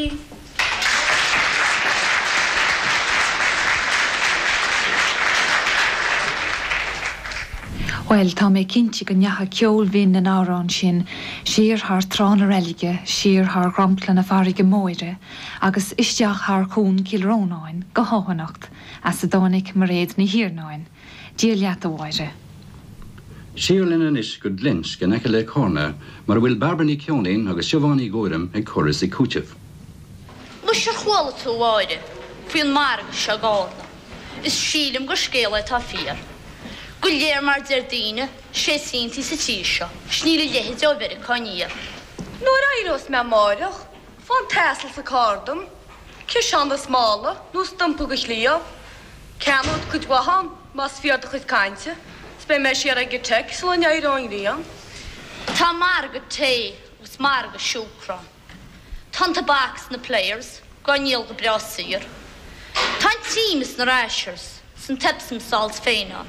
Bhuel, tá mé cinnte go ndeachaigh ceol bhinn na n-amhrán sin siar thar trá na reilige, siar thar dhromchla na farraige móire agus isteach thar chuan Chill Rónáin go hEoghanacht as a dtáinig Mairéad Ní hIarnáin. Dia leat, a Mháire. Siar linn anois go Glinsc in aice le Carna mar a bhfuil Bairbre Ní Cheoinín agus Siobhán Ní Ghuairim ag cur is ag cúiteamh. Muise, ar chuala tú, a Mháire, faoi an margadh seo i gCárna? Is sílim gur scéal é atá fíor. Go léir mar deir daoine, sé cíntín sa tír seo, is níl a leithide ó Mheiriocá aniar. Nuair éireos mé amáireach faigh an t-asal is an carr dom, ciseán is mála nó stumpa de chliabh, ceannód cuid mhaith ann más fíor do chuid cainte, 's beidh mé siar ag an Tech sula n-éireoidh an ghrian. Tá margadh tae agus margadh siúcra ann, tá an tobac 's na Players dhá ndíol go breá saor, tá an t-im is na Rashers 's an t-Epsom Salts féin ann,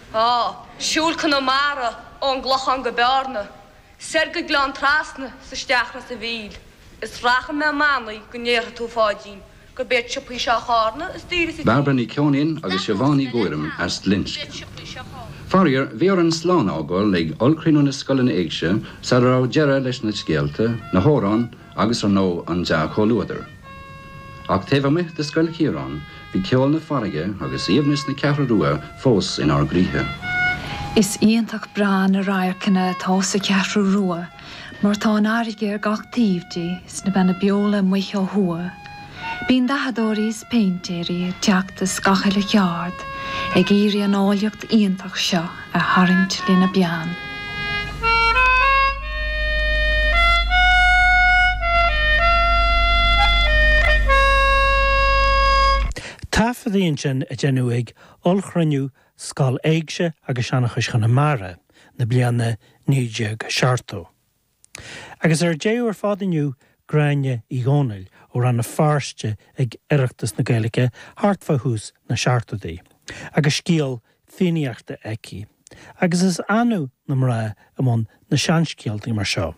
Á, siúil Conamara ón gClochán go Bearna, soir go Gleann Trasna is isteach Ros an Mhíl, is rachaidh mé i mbannaí go ndéarfaidh tú, Pháidín, gurb iad siopaí seo Charna is daoire sa Bairbre Ní Cheoinín agus Siobhán Ní Ghuairim as Glinsc. Faraor, bhí orainn slán a fhágáil ag Ollchruinniú na Scoileanna Éigse sara raibh deireadh leis na scéalta, na hamhráin, agus ar ndóigh an dea-chomhluadar. Ach taobh amuigh de Scoil Chiaráin, bhí ceol na farraige agus aoibhneas na Ceathrún Rua fós inár gcroíthe. Is iontach breá na radharcanna atá sa Cheathrú Rua mar tá an fharraige ar gach taobh di, is na Beanna Beola amuigh ó thuaidh, Bíonn dathadóirí is péintéirí ag teacht as gach uile cheard ag iarraidh an áilleacht iontach seo a tharraingt lena bpeann. Taifeadtaí ansin a deineadh ag Ollchruinniú Scoil Éigse agus Seanchais Chonamara na bliana 1970. Agus ar deireadh ar fad inniu, Gráinne Uí Dhónaill, ó Rann na Feirste ag Oireachtas na Gaeilge thart fá thús na Seachtóidí, agus scéal Fiannaíochta aici, agus is annamh na mná i mbun na seanscéaltaí mar seo.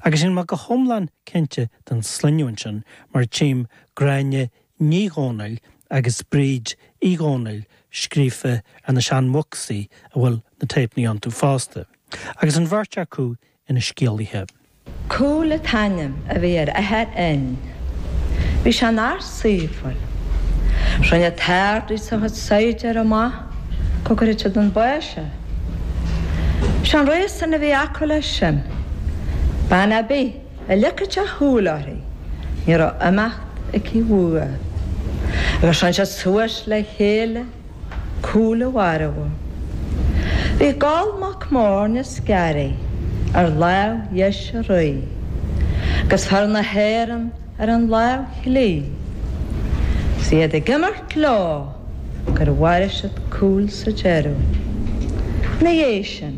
Agus níl mé go hiomlán cinnte den sloinneadh ansin mar tchím Gráinne Ní Dhomhnaill agus Bríd Uí Dhomhnaill scríofa ar na seanbhocsaí a bhfuil na téipeanna iontu fosta, agus an bheirt acu ina scéalaithe. Cumhall an t-ainm a bhí ar athair Fhinn. Bhí sé ina fhear saoithiúil. Rinne an tArd-Rí is a chuid saighdiúirí amah go gcuirfeadh siad chun báis é. Ba é an réasún a bhí acu leis sin. Bean ar bith. A leagfadh sé a shúil uirthi ní raibh imeacht aici uaidh agus rinn siad suas le chéile Cumhall a mharbhú. Bhí Goll mac Morna 's Garaí ar láimh dheis an rí agus fear na hÉireann ar an láimh chlí. Is iad ag imirt leo. gur mharaigh siad Cumhall sa deireadh. Ina dhiaidh sin,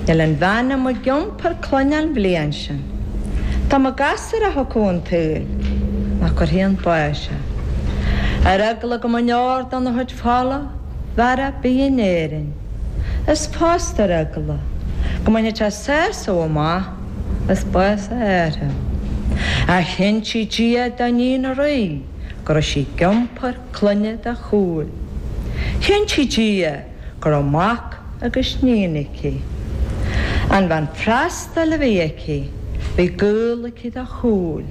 níl aon bhean a mbeadh ag iompar clainne an bhliain sin, dá mba gasúr a thiocfadh chun an tsaoil nach gcuirfí chun báis é. Ar eagla go mbeadh aon deor dena chuid fola mhara bídh in Éirinn, is fosta ar eagla go mbainfeadh sé sásamh amach as bás a athara. Ach chinntigh Dia do níon an rí. go raibh sí ag iompar cloinne do Chumhall. Chinntigh Dia go raibh mac agus níon aici. An bhean freastail a bhí aici, bhí gaol aici do Chumhall.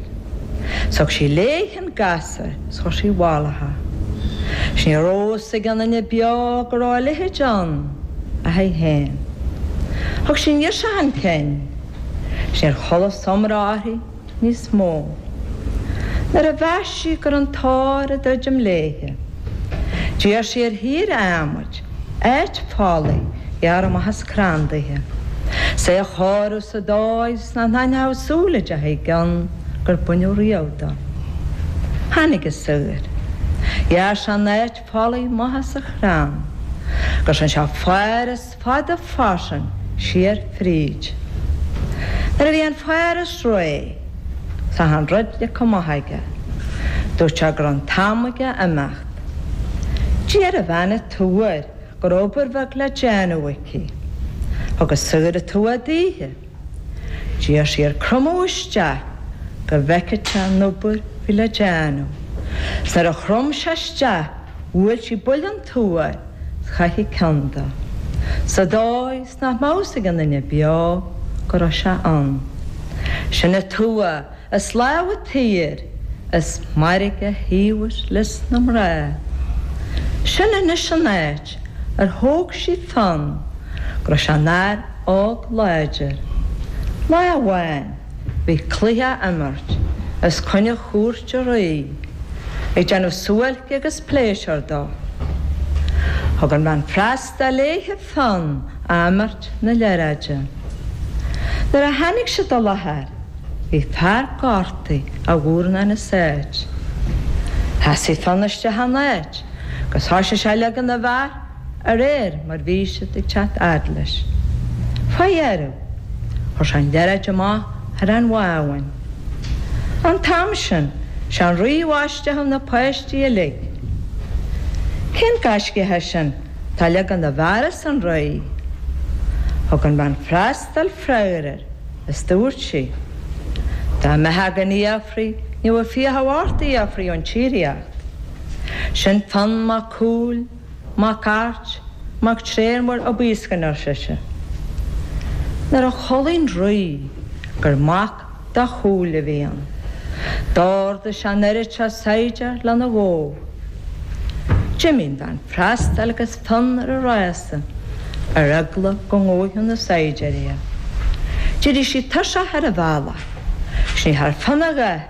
Thug sí léithe an gasúr is chuir sí i bhfolach é. Is ní raibh a fhios ag aon duine beo go raibh a leithéid ann ach aici féin. Thug sí an ghirseach chun cinn, is níor chualas iomrá uirthi. níos mó. Nuair a mheas sí go raibh an tóir ag druidim léithe, d'iarr sí ar shaor adhmaid, áit folaigh a ghearradh amach as crann daoithe, is é a chóiriú sa dóigh is nach n-aithneodh súile de thaobh gcionn gur baineadh riamh dó. Tháinig an saor. Ghearr sé an áit folaigh maithe sa chrann, agus rinn sé fáras fada fairsing siar fríd. Nuair a bhí an fáras réidh 's achan rud leagtha amach aige, dúirt sé go raibh an t-am aige imeacht. D'iarr an bhean an tua air, go raibh obair bheag le déanamh aici. Thug an saor an tua daoithe. D'iarr sí air cromadh isteach go bhfeicfeadh sé an obair a bhí le déanamh. 'S nuair a chrom sé isteach bhuail sí buille den tua air 's chaith sí an ceann de, sa dóigh 's nach mbeadh a fhios ag aon duine beo go raibh sé ann. Sin an tua as láimh an tsaoir is mairg a thaobhas leis na mná. Sin anois an áit ar thóg sí Fionn go raibh sé ina fhear óg láidir. Lá amháin bhí cluiche á imirt os coinne chúirt an rí ag déanamh suáilce agus pléisiúr dó. Thug an bhean freastail léithe Fionn ag imirt na liathróide. Nuair a tháinig siad i láthair bhí fear gortaithe, a mhurnán as áit. Sheasaigh Fionn isteach ina áit agus thoisigh sé a leagan na bhfear de réir mar bhí siad ag teacht fhad leis. Fá dheireadh chuir sé an liathróid amach thar an bhábhún. An t-am sin sé an rí a bhaisteadh na páistí uilig. Cén gaiscidhe é sin? Tá leagan na bhfear, arsa an rí. Thug an bhean freastail freagar air is dubhairt sí Dá mbeitheá gan fiafraí ní bheadh fiacha ort a fhiafraí ón tsíoraíocht. Sin Fionn Mac Cumhaill, mac Airt, mac Tréan Mhóir Uí Baoiscne, ar sise. Nuair a chualaidh an rí gur mac. do Chumhall a bhí ann. D'orduigh sé an oiread seo saighdiúr le na dhó. D'imigh an bhean freastail agus Fionn ar a rása, ar eagla go ngabhfadh na saighdiúir iad. D'éirigh sí tuirseach ar an bhealach, 'gus ní thearn Fionn a dhath,